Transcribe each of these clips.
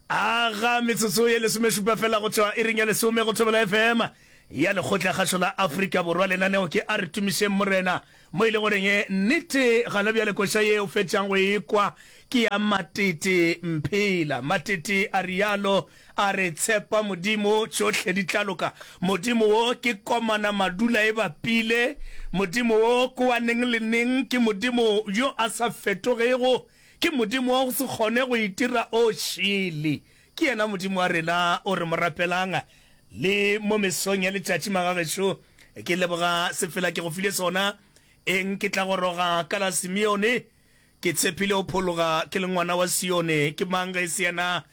aga metsotso ye lesomešupa fela go tšwa e reng ya lesome go thobela fm ya lekgotla kgašo la afrika borwa lenaneo ke a re tumišeng morena mo e le goreng e nnete gana bja lekoša ye o fetšang go ekwa ke ya matete mphela matete a rialo a re tshepa modimo tšohle di tla loka modimo wo ke komana madula e bapile modimo wo kowaneng le neng ke modimo yo a sa fetogego Ke Modimo wa go se kgone go itira o šele. Ke yena Modimo wa rena o re mo rapelang. Le mo mesong ya letšatši, magagešo, ke leboga sefela ke go file sona. Eng, ke tla goroga ka la Simeone. Ke tshepile o phologa, ke le ngwana wa Sione. Ke mang ge e se yena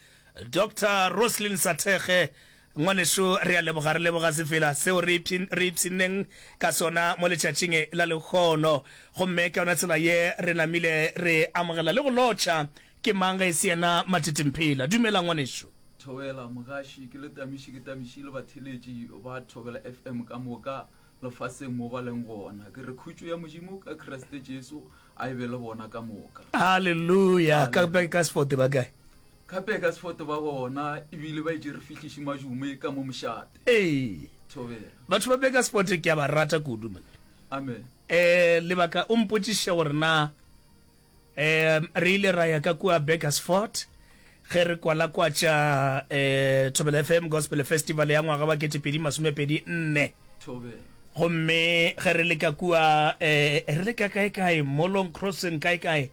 Doctor Roslyn Sathekge, Ngwanešu, re a leboga, re leboga sefela seo re ipshi, re ipshinneng ka sona mo letšatšing e la lehono. Gomme ka yona tsela ye re namile re amogela le go lotšha. Ke mang ge e se yena Matitimphela? Dumela, ngwanešu. Thobela, mogaši, ke le Tamiši, ke Tamiši le batheeletši ba Thobela FM ka moka lefaseng mo ba leng gona. Ke re khutšo ya Modimo ka Kriste Jesu a e be le bona ka moka. Aleluya! Ka, Aleluya! ka, ka Sport ba kae? Gape ka sefoto ba gona e bile ba itše re fihliše majume ka mo mošate. Ee. Thobela. Batho ba Beka Sport ke a ba rata kudu man. Amen. Eh lebaka o mpotšiše gore na eh re ile ra ya ka kua Beggars Fort ge re kwala kwa tša eh Thobela FM Gospel Festival ya ngwaga wa 2024. Thobela. Gomme ge re leka kua eh re leka kae kae Molong Crossing kae kae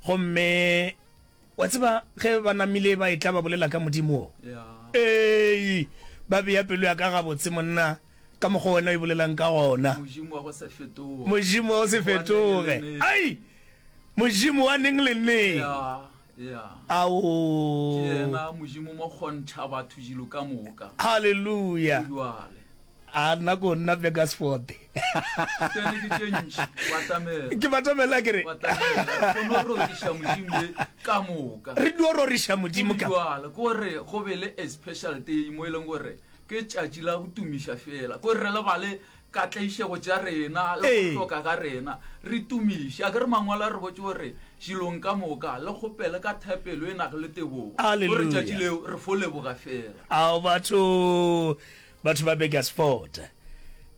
gomme Wa tseba, ge ba namile ba etla ba bolela ka Modimo wo, ee, ba bea pelo ya ka gabotse, monna, ka mokgwa wena o e bolelang ka gona. Modimo wa go se fetoge. Modimo wa go se fetoge. Ai! Modimo wa neng le neng. Ya, ya. Ao! Ke yena Modimo mo kgontšha batho dilo ka moka. Haleluya! Bjale. A nna ko nna Begasford. Tsene ke tše ntši, o atamela. Ke batamela ke re. O atamela, re kono roriša Modimo ye ka moka. Re dio roriša Modimo ka. Ke bjalo, ko re go be le a special day mo e leng gore ke tšatši la go tumiša fela. Ko re lebale ka tlaišego tša rena le go Ee. hloka ga rena, re tumiše. A ke re Mangwalo a re botše gore dilong ka moka le kgopele ka thapelo e nago le tebogo. Ko re Hallelujah. tšatši leo re fo leboga fela. Ao batho. Batho ba Burgersfort.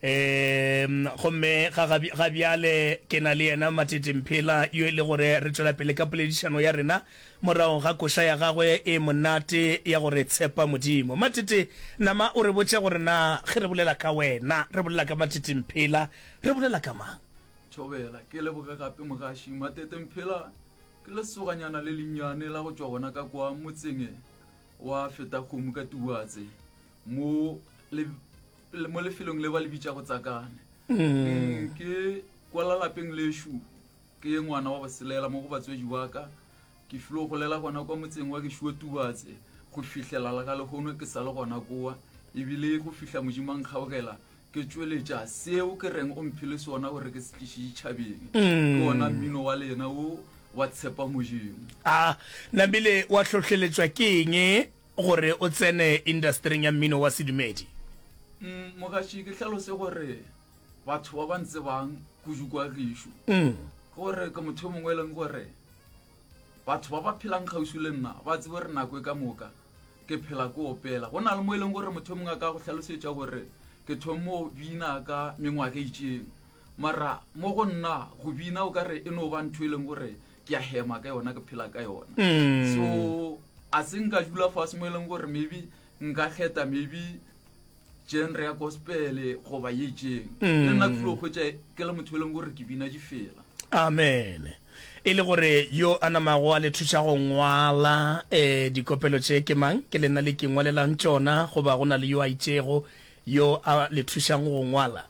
Eemm, gomme ga, ga, ga bjale ke na le yena Matete Mphela yo e le gore re tšwela pele ka poledišano ya rena morago ga koša ya gagwe e monate ya gore tshepa Modimo. Matete, nama o re botša gore na ge re bolela ka wena, re bolela ka Matete Mphela, re bolela ka mang? Thobela, ke leboge gape mogaši. Matete Mphela ke lesoganyana le lennyane la go tšwa gona ka kwa motseng wa Fetakgomo ka Tubuatse. mo le mo lefelong le ba le bitša go tsakane mm. ke kwala lapeng leshu ke ye ngwana wa boselela mo go batswedi ba ka ke filo go lela gona kwa motseng wa keshuo tubatse go fihlela la ga legono ke sa le gona kowa ebile go fihla modimo a nkgaogela ke tsweletša seo ke reng o mphele sona gore ke sekiše ditšhabeng mm. ke ona mmino wa lena o wa tshepa modimo a ah, nabile wa tlhotlheletswa ke eng Gore o tsene indasetering ya mmino wa sedumedi? Umm mogatši ke hlalose gore batho ba ba ntsebang kudu kwa gešo mm. gore ke motho mongwe e leng gore batho ba ba phelang kgauswi le nna ba tsebo re nako e ka moka ke phela ko opela go na le mo e leng gore motho mongwe a ka go tlhalosetša gore ke thomo bina ka mengwaga itseng mara mo go nna go bina o ka re e no ba ntho e leng gore ke a hema ka yona ke phela ka yona mm. so a se nka dula fase mo e leng gore maybe nka kgetha maybe genre ya gospele goba ye jeng mm. le nna tlilo kgwetsa ke le motho e leng gore ke bina di fela amen e le gore yo a namago a le thuša go ngwala um dikopelo tše ke mang ke le nna le ke ngwalelang tsona goba go na le yo a itsego yo a le thušang go ngwala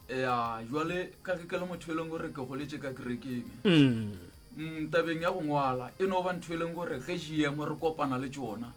ya jwale ka ge ke le motho e leng gore ke goletse ka kerekeng mm. Mm, tabeng ya go ngwala e no ba ntho e leng gore ge gmo re kopana le tsona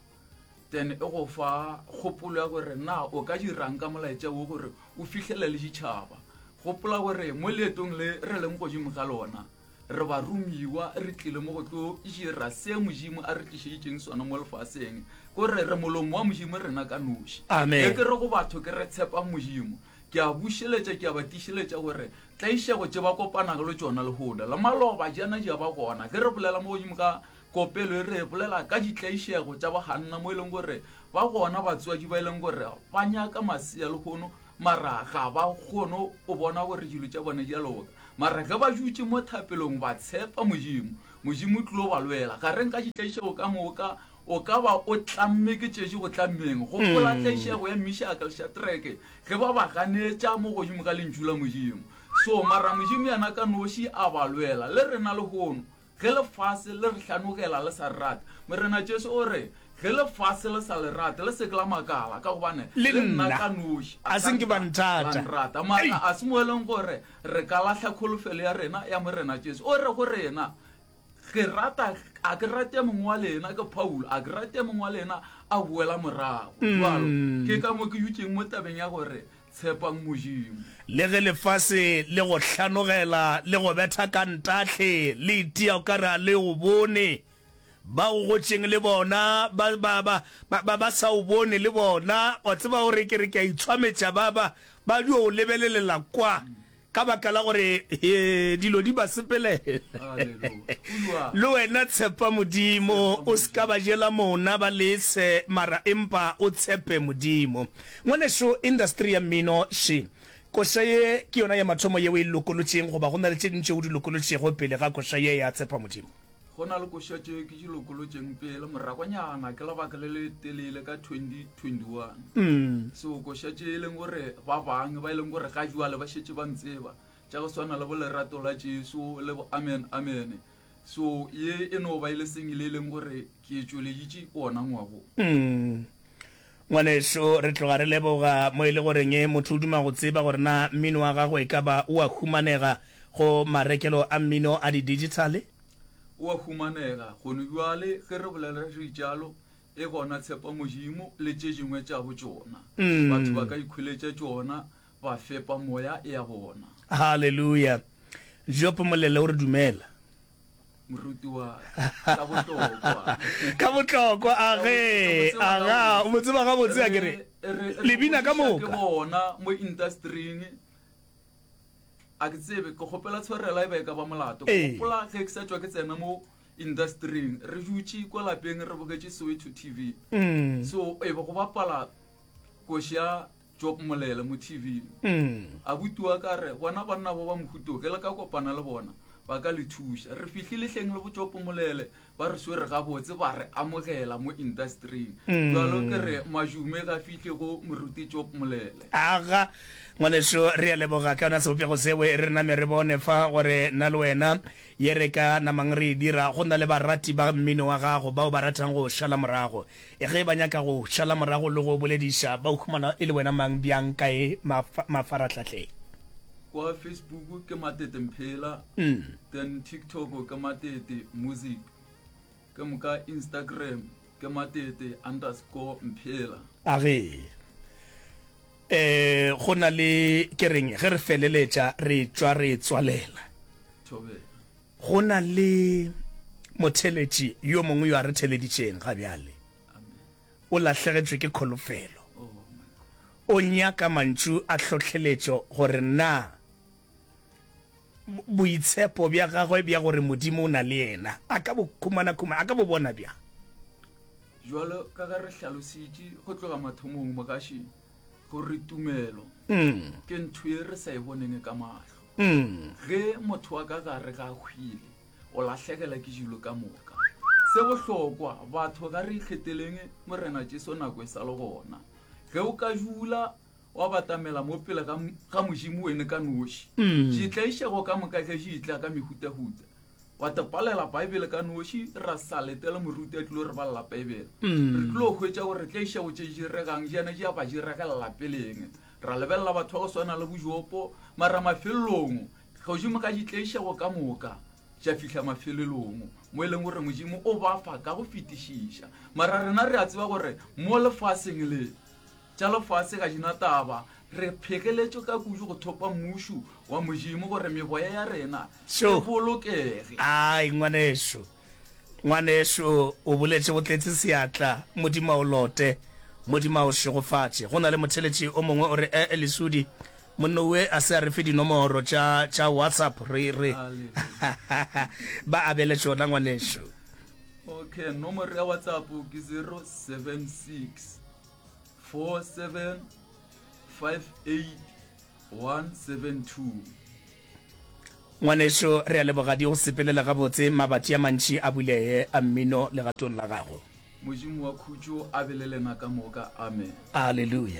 then e go fa kgopolo ya gore na o ka dirang ka molaetša wo gore o fihlele le ditšhaba gopola gore mo leetong le re leng godimo ga lona re ba romiwa re tlile mo go tlo dira se modimo a re tlišeditseng sona mo lefaseng kore re molomo wa modimo rena ka noši e ke re go batho ke re tshepang modimo Ke a bušeletša, ke a ba tiišeletša gore tlaišego tše ba kopanago le tšona lehoda la maloba djana di a ba gona. Ge re bolela mo godimo ka kopelo ye, re bolela ka ditlaišego tša baganna mo e leng gore ba gona batswadi ba e leng gore ba nyaka masea lehono mara ga ba kgone go bona gore dilo tša bona di a loka. Mara ge ba dutše mo thapelong ba tshepa Modimo, Modimo o tlilo ba lwela. Gareng ga ditlaišego ka moka O ka ba o tlamme ke tšetše go tlammeng, gopola tlaišego ya Mishaka le Shatreke ge ba ba ganetša mo godimo ka Lentšu la Modimo. So, mara Modimo yena ka noši a ba lwela. Le rena lehono, ge lefase le re hlanogela le sa re rate, Morena Jesu o re, Ge lefase le sa le rate, le se ke la makala, ka gobane Le le nna nna ka noši a se nke ba nthata. la nrata. Ei! Mara a se mo e leng gore re ka lahla kholofelo ya rena ya Morena Jesu. O re go rena, Ke rata, a ke rate mongwe wa lena, ke Paulo, a ke rate mongwe wa lena a boela morago. Jwalo, ke ka mo ke dutšeng mo tabeng ya gore tshepang Modimo. Le ge lefase le go hlanogela, le go betha ka ntahle, le itia o ka re a le o bone, ba o gotšeng le bona ba, ba, ba, ba, ba, ba sa o bone le bona, wa tseba, o re, ke re ke a itshwametša, ba, ba, ba dio o lebelelela kwa. Ka baka la gore dilo di ba sepele, le wena tshepa Modimo, o se ka ba jela mona ba lese, mara empa o tshepe Modimo. Ngwanešu, industry ya mmino še koša ye ke yona ya mathomo ye o e lokolotšeng, goba go na le tše ding tšeo o di lokolotšego pele ga koša ye ya Tshepa Modimo? Go na le koša tše ke di lokolotšeng pele morakonyana ke lebaka le le telele ka 2021 mm. so koša tše e leng gore ba bangwe ba e leng gore ga jwale ba šetse ba ntseba tša go swana le bolerato la jesu le bo amen amene so ye e no ba e le sengwe le e leng gore ke e tšweleditše ona ngwago mm. Ngwanešu, re tloga re leboga, mo e le goreng motho o duma go tseba gore na mmino wa gago e ka ba o a humanega go marekelo a mmino a didigithale. O a humanega gone bjale, ge re bolela reitšalo, e gona Tshepa Modimo le tše dingwe tša bo tšona. Batho ba ka ikhuletša tšona, ba fepa moya ya bona. Haleluya! Job Molele o re dumela. Morutiwa, ka botlokwa. Ka botlokwa, a ge, aga, o mo tseba gabotse, a kere, lebina ka moka. Re, re, re, ke bona, mo industry-ing, a ke tsebe, ke gopela tshwarela e ba e ka ba molato. Ke gopola, ge ke sa tšwa ke tsena mo industry-ing, re dutše kwa lapeng, re bogetše Soweto TV. Mm. So, e be go bapala koša. Job Molele mo TV. Abuti wa ka re bona banna ba ba mohuto ge le ka kopana le bona ba ka le thuša. Re fihle lehleng le Bojopo Molele ba re swere gabotse ba re amogela mo industering. Jalo ke re majume ga fihle go Moruti Job Molele. Aga ngwaneso re a leboga ka yona sebopego seo e re name re bone fa gore na le wena ye re ka namang re e dira go na le barati ba mmino wa gago bao ba ratang go šala morago. Ge ba nyaka go šala morago le go bolediša, ba o humana e le wena mang, bjang, kae, mafa, mafarahlahleng? Kwa Facebook ke Matete Mphela, then TikTok ke Matete Music, ke moka Instagram ke Matete underscore Mphela. A ge e go na le, ke reng, ge re feleletša re tšwa re tswalela. Thobela. Go na le motheletši yo mongwe yo a re theleditšeng ga bjale. O lahlegetšwe ke kholofelo. O nyaka mantšu a hlohleletšo gore na boitshepo bja gagwe bja gore Modimo o na le yena a ka bo khumana khumana, a ka bo bona bjang. Bjalo ka ge re hlalositše go tloga mathomong, mogaši gore tumelo ke ntho e re sa e boneng ka mahlo ge motho wa ka gare ga hwile o lahlegela ke jilo ka moka se bohlokwa batho ga re ikgeteleng morena jesu nako e sa le gona ge o ka jula wa batamela mo pele ga modimo wene ka noši ditlaišego ka moka ge di tla ka mehutahuta gwa te palela baebele ka noši ra sa letela moruti a tlilo re balela baebele mm. re tlilo hwetša gore re tla iša go tše diregang jana ja ba diregelela peleng ra lebelela batho ba go swana le bojopo mara mafelelong godimo ka di tlaixago ka moka ja fihla mafelelong mo e leng gore modimo o ba fa ka go fetišiša mara rena re a tseba gore mo lefaseng le Tša lefase ga di na taba. Re phegeletšwe ka kudu go thopa Mmušo wa Modimo gore meboya ya rena Sho. e bolokege. Ai, ngwanešu, ngwanešu, o boletše go tletše seatla. Modimo a o lote. Modimo a o šegofatše. Go na le motheletši o mongwe o re, E, e, Lesudi, monna uwe a se a re fe dinomoro tša, tša WhatsApp, re, re. Haleluya. Ba abele tšona, ngwanešu. Okay, nomoro ya WhatsApp ke 076. 4758 Ngwanešu, re a leboga di go sepelela gabotse mabatši a mantši a bulee a mmino legatong la gago. Modimo wa khutšo a be le lena ka moka. Amen. Aleluya.